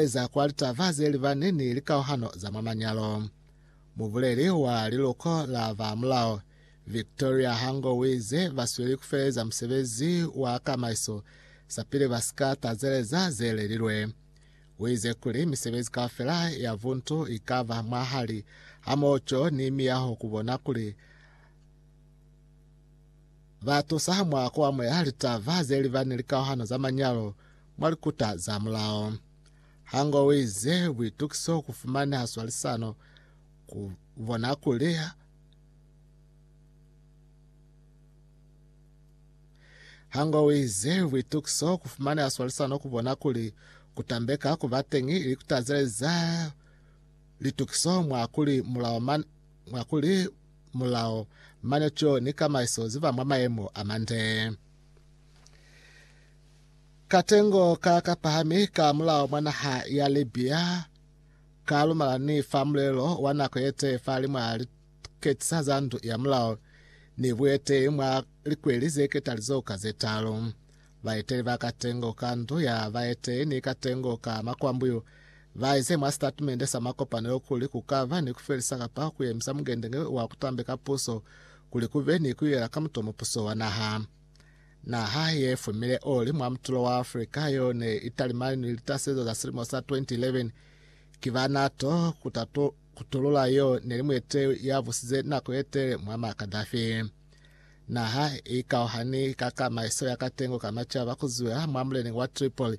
Eza kwa litaba ze li ba ni ni likauhano za mwa manyalo. Mubuleli wa liluko la ba mulao, Victoria Hango uize ba sweli ku feleza musebezi wa kamaiso sapili ba si ka tazeleza ze lelilwe. Uize kuli misebezi kaufela ya buntu i ka ba mwahali hamoho co ni miyaho ku bona kuli ba tusa mwa ku amuhela litaba ze li ba ni likauhano za manyalo, mwa likuta za mulao. Hango o ize, Buitukiso ku fumaneha swalisano ku bona kuli Hango o ize, Buitukiso ku fumaneha swalisano ku bona kuli ku tambeka ku ba teñi ili ku tazeleza litukiso mwa kuli mulao man, mwa kuli mulao manetšo ni kamaiso zi ba mwa mayemo a mande. Katengo ka ka pahami ka mulao mwa naha ya Libya ka lumala ni fa mulelo wa nako ye tee fa limwa liketisa za ndu ya mulao ni bueteyi mwa likweli ze ketalizoho ka ze talu. Baeteli ba katengo ka ndu ya baeteyi ni katengo ka makwambuyu ba ize mwa sitatimende sa makopanelo kuli ku ka ba ni ku felisa kapa ku yemisa mungendenge wa ku tambeka puso kuli ku be ni ku yela ka mutomo puso wa naha. Naha ye fumile oli mwa mutulo wa Afrika yo ne i talimani ni litasezo za silimo sa 2011 ki ba NATO ku ta kutulula yo ne li muete ya busize nako ye tele Muammar Gaddafi. Naha i ikauhani ka kamaiso ya katengo ka macaba ku zwela mwa muleneñi wa Tripoli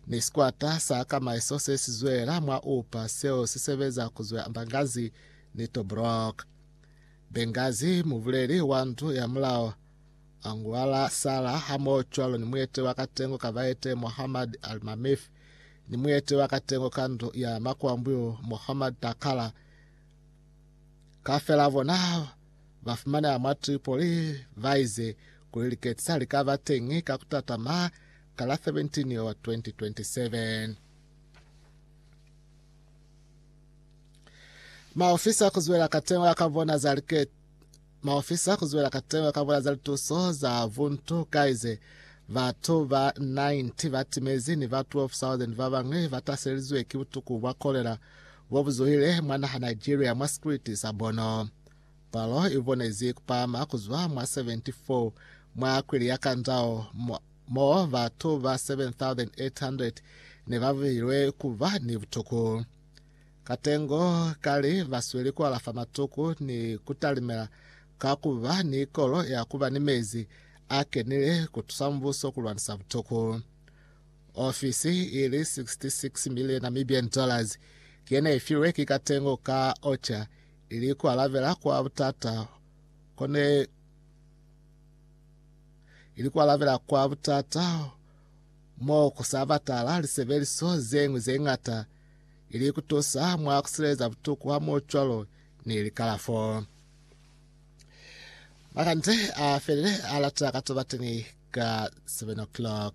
ni sikwata sa kamaiso se si zwela mwa Upa seo si sebeza ku zwela Benghazi ni Tobruk. Benghazi mubuleli wa ndu ya mulao a ngwala Sala hamoho cwalo ni muete wa katengo ka baete Muhammad Al-Mamif ni muete wa katengo ka ndu ya makwambuyo Muhammad Takala kafela bona ba fumaneha mwa Tripoli ba ize kuli liketsi sa li ka ba teñi ka kutatama ka la 17 Yowa 2027. Maofisa kuzwela katengo ya ka bona za liketsi Maofisa ku zwela kateho ka bula za lituso za buntu kaize batu ba 90 ba timezi ni ba 12,000 ba bañwi ba taselizwe ki butuku bwa kolera bo bu zuhile mwa naha Nigeria mwa sikriti sa Borno. Palo i bonezi ku pahama ku zwa mwa 74 mwa kwili ya Kandao mo batu ba 7,800 ne ba buhilwe ku ba ni butuku. Katengo kali, Basweli kualafa matuku ni kutalimela ka kuba ni ikolo ya kuba ni mezi a kenile kutusa mubuso kulwanisa butuku. Ofisi ili 66 million Namibian dollars ki yene ifilwe ki Katengo ka OCHA ili kualabela kwa butata kone ili kualabela kwa butata mo kusa batala lisebeliso zeñwi zeñata ili ku tusa mwa ku sileleza butuku ha mo cwalo ni likalafo. Makande a felile a lata ka to bateñi ka 7 o'clock.